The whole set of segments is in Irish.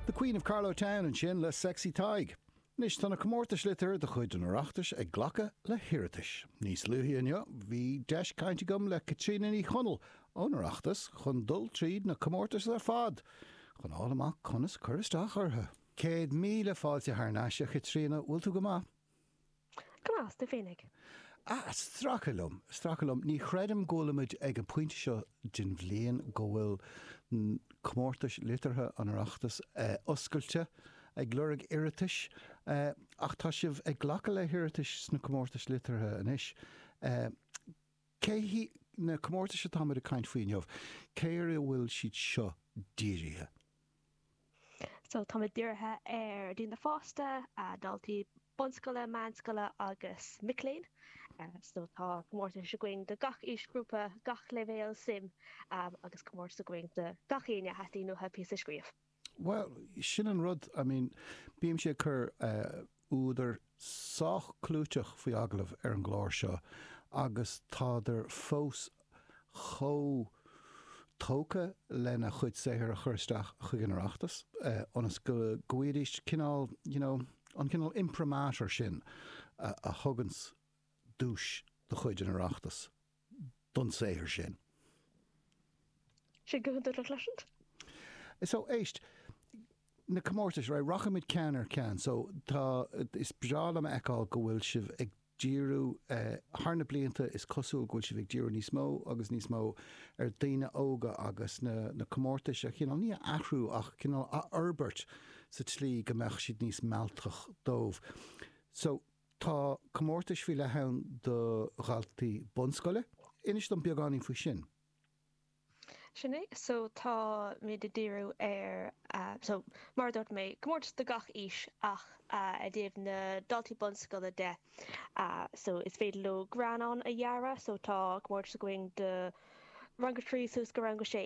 The Queen of Carlow Town ansin le Sexy Tadhg. Anois tá na comórtais liteartha de chuid an Oireachtais ag glacadh le hiarratais. Níos luaithe inniu bhí deis cainte agam le Caitríona Ní Chonaill ón Oireachtas chun dul tríd na comórtais ar fad chun a fháil amach conas cur isteach orthu. Céad míle fáilte thar n-ais, a Chaitríona, bhfuil tú go maith? Go deas, tú féinig? Ah, stracadh liom, stracadh liom, ní chreidim go bhfuil muid ag an bpointe seo den bhliain go bhfuil Comórtais Liteartha an Oireachtais oscailte ag lorg iarratais, ach tá sibh ag glacadh le hiarratais sna Comórtais Liteartha anois. Cé hiad na comórtais atá muid ag caint faoi inniu? Cé ar a bhfuil siad seo dírithe? So tá muid dírithe ar daoine fásta, daltaí bunscoile, meánscoile agus mic léinn. So tá comórtais againn do gach aoisghrúpa, gach leibhéal suime agus comórtas againn do gach éinne a theastaíonn uathu píosa a scríobh. Bhuel, sin an rud, I mean bímse ag cur údair sách clúiteach faoi agallamh ar an gclár seo agus tádar fós chomh tógtha lena chuid saothair a chur isteach chuig an Oireachtas ionas go bhfaighidís cineál, you know, an cineál imprimatur sin a thugann duais de chuid an Oireachtais. don saothar sin. So, éist. Na comórtais, right, rachaidh muid ceann ar cheann. So, tá, is breá liom a fheiceáil go bhfuil sibh ag díriú, thar na blianta is cosúil go bhfuil sibh ag díriú níos mó agus níos mó ar dhaoine óga agus na, na comórtais a chineál, ní a athrú ach cineál a fhorbairt sa tslí go mbeadh siad níos mealltach dóibh. So. Tá comórtais faoi leith ann do dhaltaí bunscoile. Inis dom beagáinín faoi sin. Sin é so tá muid ag díriú ar so mar a dúirt mé comórtas do gach aois ach i dtaobh na daltaí bunscoile de so is féidir leo greannán a dhearadh so tá comórtas againn do rang a trí suas go rang a sé.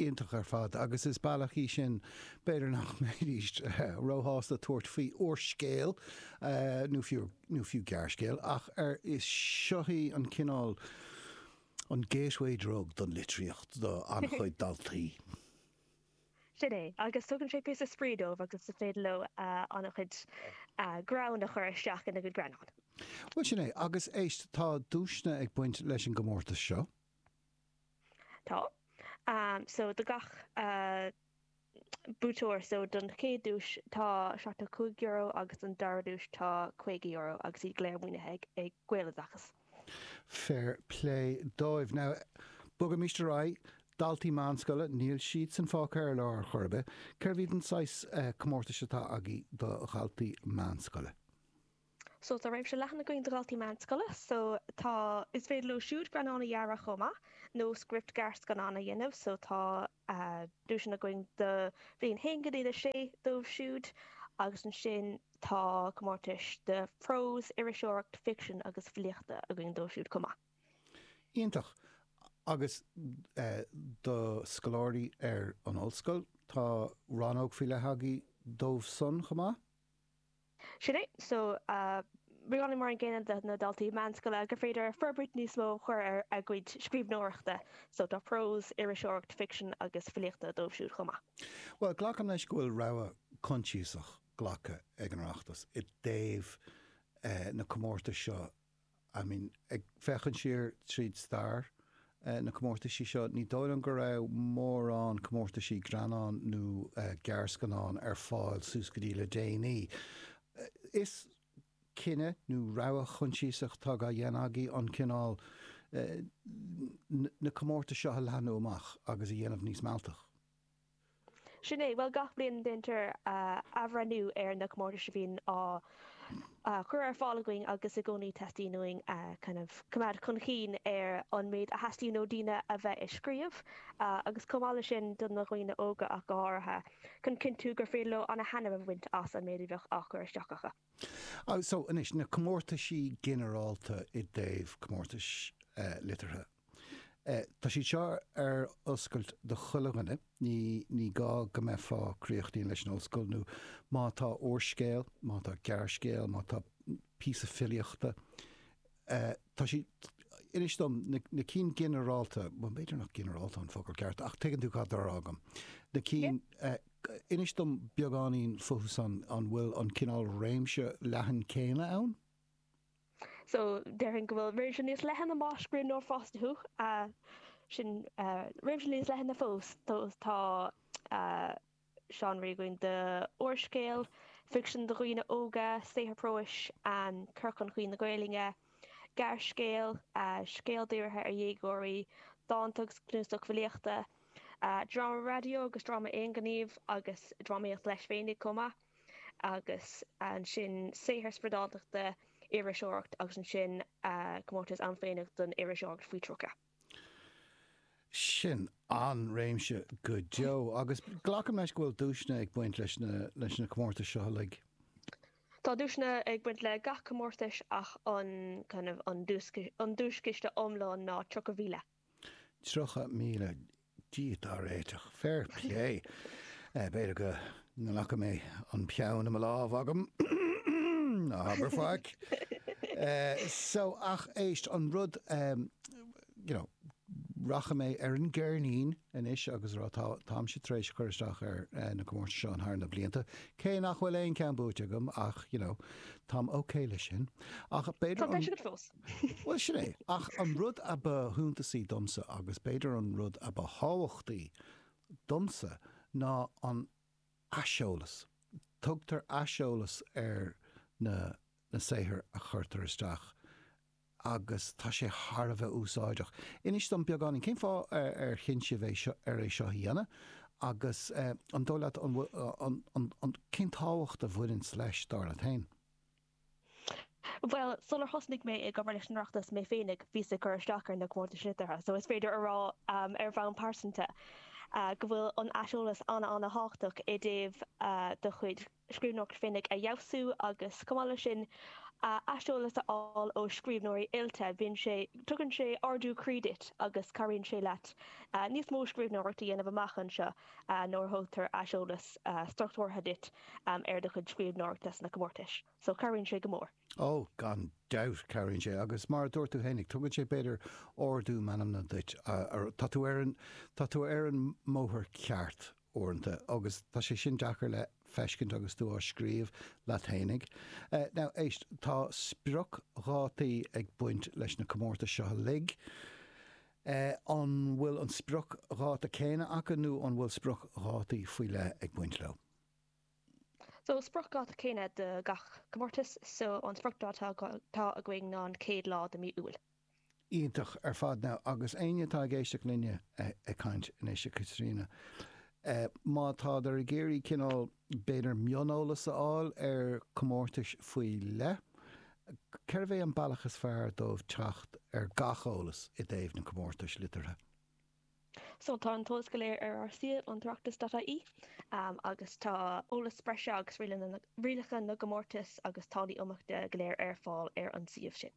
Iontach ar fad, agus is bealach í sin, b'fhéidir nach mbeidís róshásta tabhairt faoi úrscéal nó fiú, nó fiú gearrscéal, ach ar, is, seo í an cineál, an gateway drug don litríocht do an-chuid daltaí. Sin é, agus tugann sé píosa spraoi dóibh agus is féidir leo an-chuid greann a chur isteach ina gcuid greannán. Bhuel, sin é, agus éist, tá duaiseanna ag baint leis an gcomórtas seo. Tá. So do gach buaiteoir, so don chéad duais tá €75 agus don dara duais tá €50 agus iad go léir maoinithe ag Gaeloideachas. Fair plé dóibh. Now bogaimis ar aghaidh. Daltaí meánscoile, níl siadsan fágtha ar lár ar chor ar bith. Cé hiad an saghas comórtais atá agaibh do dhaltaí meánscoile? so tá réimse leathan againn do dhaltaí meánscoile so tá, is féidir leo siúd greannán a dhearadh chomh maith nó script gearrscannán a dhéanamh so tá duaiseanna againn do bhliain 1 go dtí 6 dóibh siúd agus ansin tá comórtais do phrós, iriseoireacht, ficsean agus filíocht againn dóibh siúd chomh maith. Iontach. Agus do scoláirí ar an ollscoil, tá rannóg faoi leith agaí dóibh san chomh maith? Sin é. So, ginearálta mar an gcéanna do na daltaí meánscoile gur féidir forbairt níos mó a chur ar a gcuid scríbhneoireachta. So, tá prós, iriseoireacht, ficsean agus filíocht dóibh siúd chomh maith. Bhuel, glacaim leis go bhfuil rogha choinsiasach glactha ag an Oireachtas i dtaobh na comórtais seo I mean, ag féachaint siar tríd stair na comórtaisí seo, ní dóigh liom go raibh mórán comórtaisí greannán nó gearrscannán ar fáil suas go dtí le déanaí. Is cinneadh nó rogha choinsiasach atá á dhéanamh agaí an cineál na comórtais seo a leathnú amach agus a dhéanamh níos mealltaí. Sin é, bhuel gach bliain déantar athbhreithniú ar na comórtais a bhíonn á chur ar fáil againn agus i gcónaí teastaíonn uainn kind of coimeád chun cinn ar an méid a theastaíonn ó daoine a bheith ag scríobh agus chomh maith leis sin do na dhaoine óga ach go háirithe chun cinntiú gur féidir leo ana-thaitneamh a bhaint as an méid a bheadh á chur isteach acu. So anois, na comórtaisí ginearálta i dtaobh comórtais liteartha. Tá siad seo ar oscailt do chuile dhuine. Ní gá go mbeifeá críochnaithe leis an ollscoil nó má tá úrscéal, má tá gearrscéal, má tá píosa filíochta, tá siad, inis dom na cinn ginearálta, bhuel b'fhéidir nach ginearálta an focal ceart ach tuigeann tú cad atá á rá agam, na cinn, inis dom beagáinín fúthu san, an bhfuil an cineál réimse leathan céanna ann? So déarfainn go bhfuil réimse níos leithne más scríbhneoir fásta thú sin réimse níos leithne fós tá seánraí againn do úrscéal, ficsean do dhaoine óga, saothar próis, cur chun cinn na Gaeilge, gearrscéal, scéal dírithe ar dhéagóirí, dánta agus cnuasach filíochta, dráma raidió agus dráma aonghnímh agus drámaíocht leis féinig chomh maith. agus ansin saothar spriodáltachta, iriseoireacht agus ansin comórtas ann féinig don iriseoireacht faoi 30. Sin an réimse go deo agus glacaim leis go bhfuil duaiseanna ag baint leis leis na comórtais seo uilig. Tá duaiseanna ag baint le gach comórtas ach an kind of an duaischiste iomlán ná 30,000. 30,000 Dia dár réiteach. Fair plé. B'fhéidir go nglacfaidh mé an peann i mo lámh agam. Ná habair faic. So, ach éist, an rud, you know, rachaidh mé ar an gceirnín anois agus a rá go bhfuil, táimse tar éis cur isteach ar na comórtais seo thar na blianta, cé nach bhfuil aon cheann buaite agam ach, you know, táim okay leis sin. Ach b'fhéidir an, Bhuel, sin é. Ach an rud ba shuntasaí domsa, agus b'fhéidir an rud ba thábhachtaí domsa, ná an t-aiseolas. Tugtar aiseolas ar na na saothair a chuirtear isteach agus tá sé thar a bheith úsáideach. Inis dom beagáinín, cén fáth ar chinn sibh é seo, ar é seo a dhéanamh agus an dóigh leat an bhfuil, an, an, an, cén tábhacht a bhaineann leis, dar leat féin? Bhuel, sular thosnaigh mé ag obair leis an Oireachtas mé féinig, bhíos ag cur isteach ar na comórtais liteartha, so is féidir a rá, ar bhonn pearsanta, go bhfuil an t-aiseolas an-an-thábhachtach i dtaobh do chuid scríbhneoireacht féinig a fheabhsú agus, chomh maith leis sin, aiseolas a fháil ó scríbhneoirí oilte. Bíonn sé, tugann sé ardú croí duit agus cabhraíonn sé leat níos mó scríbhneoireacht a dhéanamh amach anseo. nuair a thugtar aiseolas struchtúrtha duit ar do chuid scríbhneoireachta sna comórtais. So, cabhraíonn sé go mór. Ó, gan dabht, cabhraíonn sé. Agus mar a dúirt tú fhéinig, tugann sé, b'fhéidir, ardú meanmna duit. Tá tú ar an, tá tú ar an mbóthar ceart, uaireanta. Agus tá sé sin deacair le feiscint agus tú á scríobh leat fhéinig. Now, éist, tá spriocdhátaí ag baint leis na comórtais seo uilig. An bhfuil an spriocdháta céanna acu nó an bhfuil spriocdhátaí faoi leith ag baint leo? So, spriocdháta céanna do gach comórtas. So, an spriocdháta atá againn ná an chéad lá de mhí Iúil. Iontach ar fad. Now, agus éinne atá ag éisteacht linne ag caint anois, a Chaitríona, má tádar ag iarraidh cineál, B'fhéidir mioneolas a fháil ar chomórtais faoi leith. Cérbh é an bealach is fearr dóibh teacht ar gach eolas i dtaobh na gcomórtais liteartha? So tá an t-eolas go léir ar ár suíomh, an tOireachtas.ie, agus tá eolas breise agus rialacha na gcomórtas agus táillí iontrála go léir ar fáil ar an suíomh sin.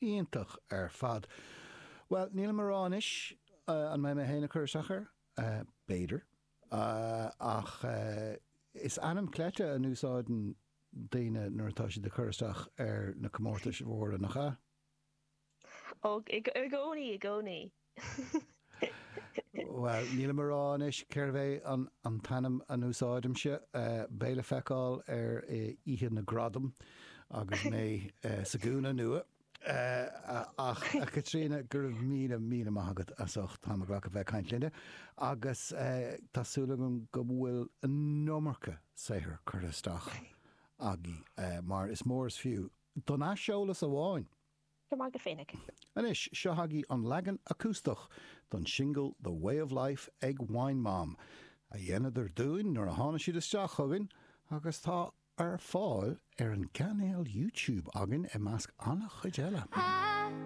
Iontach ar fad. Bhuel, nílim ag rá anois an mbeidh mé féin ag cur isteach air. B'fhéidir. ach is ainm cleite a n-úsáideann daoine nuair atá siad ag cur isteach ar na comórtais mhóra, nach ea? Och, i gcónaí, i gcónaí. Bhuel, nílim a rá anois cérbh é an t-ainm a n-úsáidimse. Beidh le feiceáil ar oíche na ngradam agus mé sa gcúinne nua. Ach, a Chaitríona, go raibh míle, míle maith agat as ucht t'am a ghlacadh a bheith ag caint linne agus tá súil agam go bhfuil an iomarca saothair curtha isteach agaibh mar is mór is fiú don aiseolas amháin! Go maith agat féinig! Anois, seo chugaibh an leagan acústach don singil The Way of Life ag Wine Mom, a dheineadar dúinn nuair a tháinig siad isteach chugainn agus tá Ar fáil ar an gcainéal YouTube againn, i measc an-chuid eile.